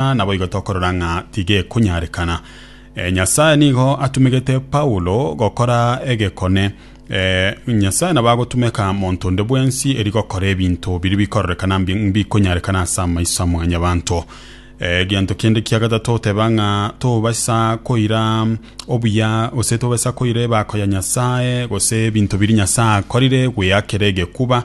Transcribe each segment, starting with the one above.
Ah, naboigo tokorora ng'a tigekonyarekana. Eh, Nyasae nigo atumegete Paulo gokora egekone. Eh, Nyasae nabo agotumeka monto onde bwensi eri gokora ebinto biri bikororekana mbi- mbikonyarekana ase amaiso a mwanyabanto. Eh, Egento kende kia gatato oteba ng'a tobaisa koira obuya gose tobaisa koira ebako ya Nyasae gose ebinto biri Nyasae akorire gweakera egekuba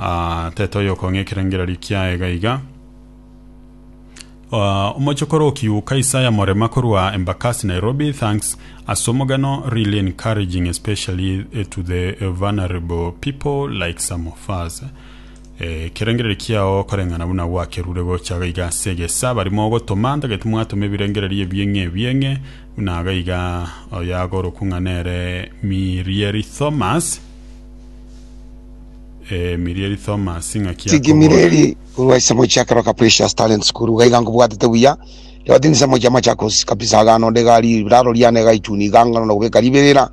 Aa, tete oyokong'a ekerengererio kiaye iga iga. Aa, omochokoro okiuka Isaya Morema korwa Embakasi Nairobi, thanks ase omogano, really encouraging especially eh, to the eh, vulnerable people like some of us. Eh, ekerengererio kiao koreng'ana buna gwakerure gocha iga iga ase egesa bari mogotoma, ntagete mwatoma ebirengererio ebieng'e ebieng'e buna iga iga oyo agorokwa ng'a nere Mirieri Thomas. Eh, mirieri Thomas ng'aki akobora. Tigimirieri korwa ase mochie akeroka Precious Talent School iga iga nkobwatete buya ribaga tindi ase mochie amachakosi kabisa iga nonde iga riraro riane iga ituni iga ngano na gobeka ribirira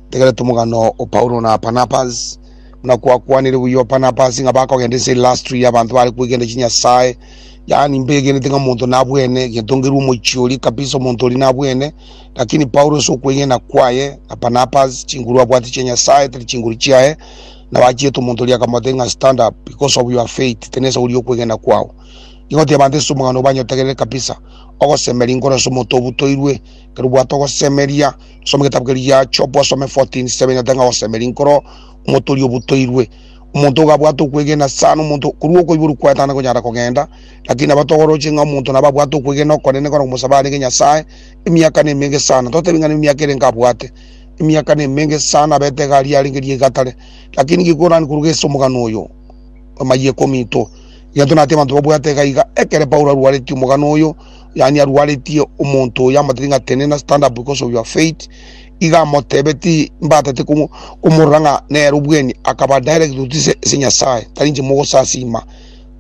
ntegerete omogano o Paulo na Barnabas buna kwakwanire buya o Barnabas ng'a bakogenda ase industry y'abanto bare kwegenda chinyasae yaani mbegenete ng'a omonto nabwene egento nkerwa omochie oria kabisa omonto oria nabwene Lakini Paulo ase okwegena kwaye na Barnabas, chinguru abwate chia Nyasae tari chinguru chiaye, na bachiete omonto oria akamote ng'a stand up because of your faith, tari nesa goria okwegena kwao. Nigo tiabante ase omogano obanyotegerere kabisa. Ogosemeria inkoro ase omonto obutoirwe, ekero obwate ogosemeria, soma egetabu keria gia Job osome 14 7 nyate ng'a ogosemeria inkoro omonto oria obutoirwe. Omonto iga abwate okwegena sana, omonto korwa okoiborwa kwaye tana konyara kogenda, lakini nabo togoroche ng'a omonto nabo abwate okwegena okonene kona komosaba arege Nyasae, emiaka nemenge sana totebe ng'a nemiaka ere nkabwate emiaka nemenge sana abete egari arenge riaiga tare lakini gekorani koruga ase omogano oyo amayia ekomi ito egento nati abanto babwate egaiga ekere paulo arwaretie omogano oyo yani arwaretie omonto oyo amatiri ng'a tenena stand up because of your faith iga amotebeti mbatete komo- komorora ng'a nere obweni akaba direct otise ase nyasaye tari inche mogosasima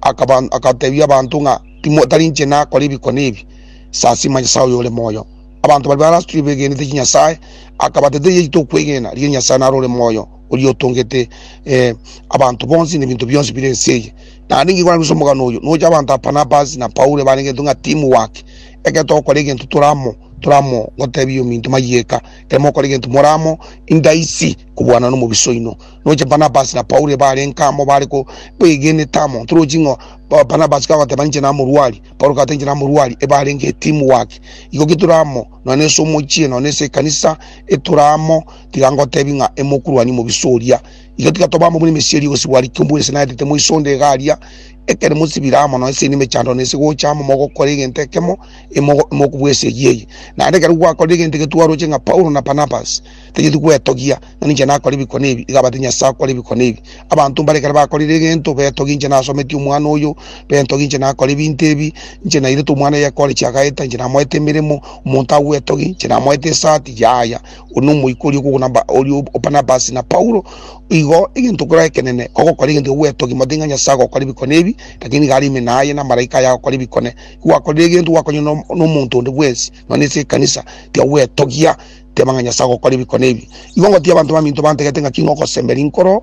akaba akatebia abanto ng'a timo tari inche nakora ebikone ebi Sasima Nyasae oyore moyo. Abanto baria barasitwe begenete chinyasae, akabateta eyio yaito okwegena, riria Nyasae naro ore moyo, oria otongete eh, abanto bonsi na ebinto bionsi bire ense eye. Naende nigo nabisa omogano oyo, nocha abanto a Barnabas na Paulo ebarengetwe ng'a teamwork. Ekero togokora egento tore amo, tore amo gotebia ominto mayieka. Ekero mogokora egento more amo, indaisi kobwanana na omobisa oino. Nocha Barnabas na Paulo ebarenge amo bare ko begenete amo. Torochi ng'a Barnabas kagoteba inche namorwari, Paulo akatenchera n'aborwari ebarenge etimu waki, igo getore amo, nonya nese omochie, nonya nese ekanisa, etore amo, tiga ngotebi ng'a emokuruani mobiso oria. Iga tiga tobe amo buna emesieri egosibwa aria kiombe buna ase naetete moisonde iga aria, ekero mosibire amo, nonya ase emechando, nonya ase gocha amo mogokora egento ekemo, imogo imokobua ase eyio eye. Naende ekero gwakorire egento egetwarwa oche ng'a Paulo na Barnabas, tanyeti gwetogia, na ninche nakore ebikone ebi. Iga abatiga Nyasae akore ebikone ebi. Abanto mbare ekero bakorire egento, betogia inche nasometie omwana oyo, betogia inche nakore ebinto ebi, inche nairete omwana oyo ekore chiagaeta, inche namoete emeremo, omonto agwetogie, inche namoete esati, yaya. Oyo nomoika oria okoguna Ba- oria o- Barnabas na Paulo. Igo egento kore ekenene, ogokora egento ekio gwetogia, motige ng'a Nyasae agokora ebikone ebi, lakini iga are ime naye na amalaika aye agokora ebikone. Ki gwakorire egento gwakonywa no- nomonto onde bwensi, nonya ase ekanisa, tiga gwetogia. teba ng'a Nyasae agokora ebi kona ebi. Igo ngotiia abanto baminto bantegete ng'a king'okosemberia inkoro